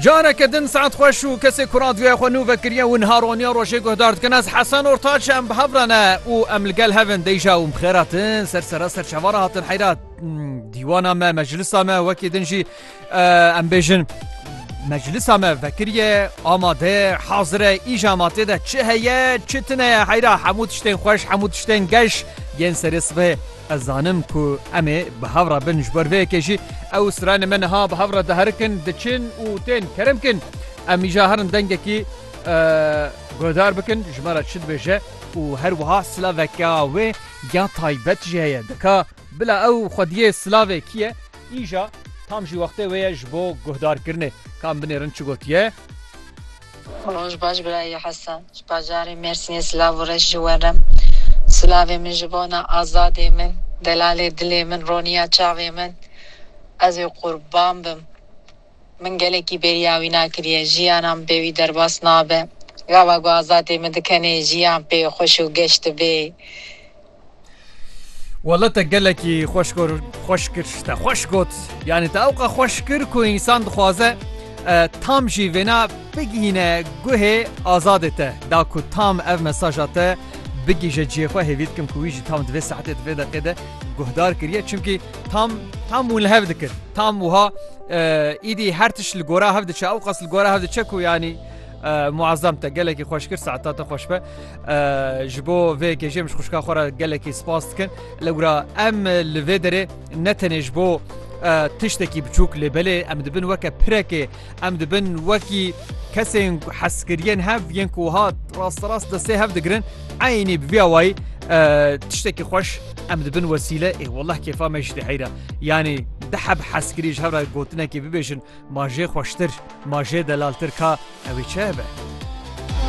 Careke din saet xweş û kesê ku radyoya xwe nû vekiriye û niha roniya rojê guhdar dikin ez Hesen Ortaç em bi hev re ne û em li gel hevin deyja û xêratin ser sera ser çavara hatin heyra dîwana me meclisa me wekî din jî em bêjin meclisa me vekiriye amade hazire îja ma tê de çi heye çi tine heyra hemû tiştên xweş hemû tiştên geş yên serê sibê Ez zanim ku em ê bi hev re bin ji ber vê yekê jî ew stranên me niha bi hev re diherikin, diçin û tên kerem kin. Em îja herin dengekî guhdar bikin ji me re çi dibêje û her wiha silaveke wê ya taybet jî heye dika bila ew xwediyê silavê kî ye îja tam jî wextê wê ye ji bo guhdarkirinê ka em binêrin çi gotiye. Roj baş birayê Hesen. Ji bajarê Mêrsînê silav û reş ji we re. Silavê min ji bona azadê min, delalê dilê min, roniya çavê min. Ez ê qurban bim. Min gelekî bêriya wî na kiriye. Jiyana min pê wî derbas nabe. Gava ku azadê min dikenê jiyan pê xweş û geş dibê. Walla te gelekî xweş kor xweş kir te xweş got yanî te ewqa xweş kir ku însan dixwaze tam jî vêna bigihîne guhê azadê te da ku tam ev mesaja te bigîje ciyê xwe hêvî dikim ku wî jî tam divê saetê divê deqê de guhdar kiriye çimkî tam tam û li hev dikir tam wiha êdî her tişt li gora hev diçe ew qas li gora hev diçe ku yanî Muazzam te gelekî xweş kir saeta te xweş be ji bo vê yekê jê min ji xuşka xwe re gelekî spas dikin li wira em li vê derê ne tenê ji bo tiştekî biçûk lê belê em dibin weke pirekê em dibin wekî kesên heskiriyên hev yên ku hat rasterast destê hev digirin eynî bi vîya wayî tiştekî xweş em dibin wesîle ê wellah kêfa me ji dê heyra yanî diheb heskirî ji hev re gotinekê bibêjin Ma jê xweştir, ma jê delaltir ka ewê çi ebe?